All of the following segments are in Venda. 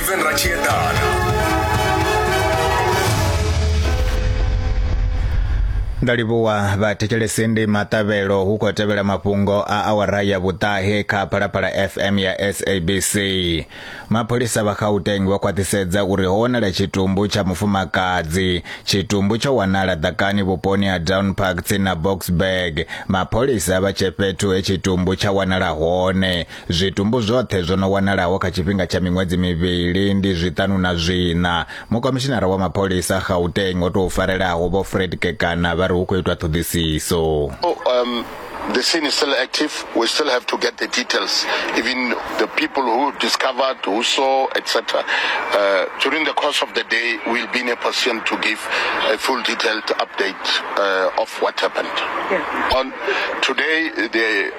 Steven ra tshi eḓana Nda livhuwa vhathetshelesi ndi maṱavhelo hu khou tevhela mafhungo a awara ya vhuṱahe kha Phalaphala FM ya SABC. Mapholisa vha Gauteng vha khwaṱhisedza uri ho wanala tshitumbu tsha mufumakadzi. Tshitumbu tsho wanala ḓakani vhuponi ha Down Park tsini na Boksburg. Mapholisa vha tshe fhethu he tshitumbu tsha wanala hone. Zwitumbu zwoṱhe zwo no wanalaho kha tshifhinga tsha miṅwedzi mivhili ndi zwiṱanu na zwiṋa. Mukomishinara wa mapholisa Gauteng o tou farelaho Vho Fred Kekana vha ri hu khou itwa ṱhoḓisiso. Oh, um, the scene is still active. We still have to get the details, even the people who discovered, who saw, etc. Uh, during the course of the day, we'll be in a position to give a full detailed update uh, of what happened. Yeah. On today, the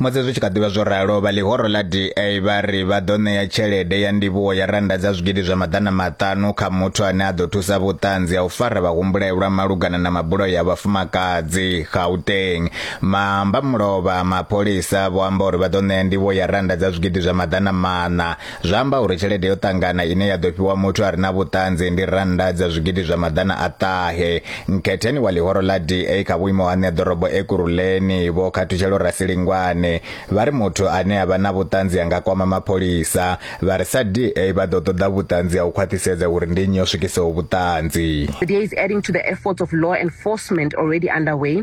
Musi zwi tshi kha ḓi vha zwo ralo, vha ḽihoro ḽa DA vha ri vha ḓo ṋea tshelede ya ndivhuwo ya rannda dza zwigidi zwa maḓana maṱanu kha muthu ane a ḓo thusa vhuṱanzi ha u fara vhahumbulelwa malugana na mabulayo a vhafumakadzi Gauteng. Maambamulova a mapholisa vho amba uri vha ḓo ṋea ndivhuwo ya rannda dza zwigidi zwa maḓana maṋa Zwa amba uri tshelede yo ṱangana ine ya ḓo fhiwa muthu a re na vhuṱanzi ndi rannda dza zwigidi zwa maḓana a ṱahe. Nkhetheni wa ḽihoro ḽa DA kha vhuimo ha ṋeḓorobo Ekurhuleni, Vho Khathutshelo Rasilingwane, vha ri muthu ane a vha na vhuṱanzi a nga kwama mapholisa. Vha ri sa DA vha ḓo ṱoḓa vhuṱanzi ha u khwaṱhisedza uri ndi nnyi o swikisaho vhuṱanzi. The DA is adding to the efforts of law enforcement already underway.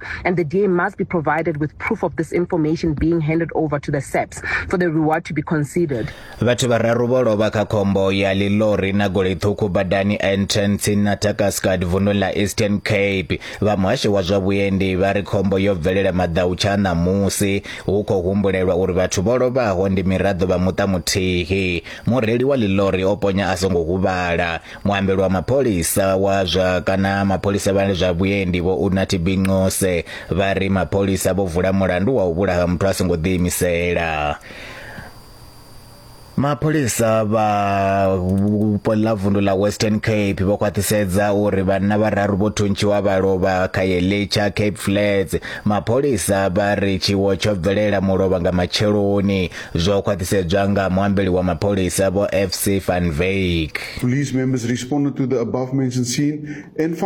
and the DA must be provided with proof of this information being handed over to the SAPS for the reward to be considered. Vhathu vhararu vho lovha kha khombo ya ḽilori na goloi ṱhukhu badani N10 tsini na Takaskad vunḓuni ḽa Eastern Cape. Vha muhasho wa zwa vhuendi vha ri khombo yo bvelela maḓau tsha ṋamusi hu khou humbulelwa uri vhathu vho lovhaho ndi miraḓo vha muṱa muthihi. Mureili wa ḽilori o ponya a songo huvhala. muambeli wa mapholisa wa zwa kana mapholisa vha zwa vhuendi vho unathi binqose vha ri mapholisa vho vula mulandu wa u vhulaha muthu a songo ḓiimisela mapholisa vha vhupo ḽa vundu ḽa western cape vho khwaṱhisedza uri vhanna vhararu vho thuntshiwa vha lovha kha yelitsha cape flats mapholisa vha ri tshiwo tsho bvelela mulovha nga matsheloni zwo khwaṱhisedzwa nga muambeli wa mapholisa vho FC van Wyk. Police members responded to the above mentioned scene and found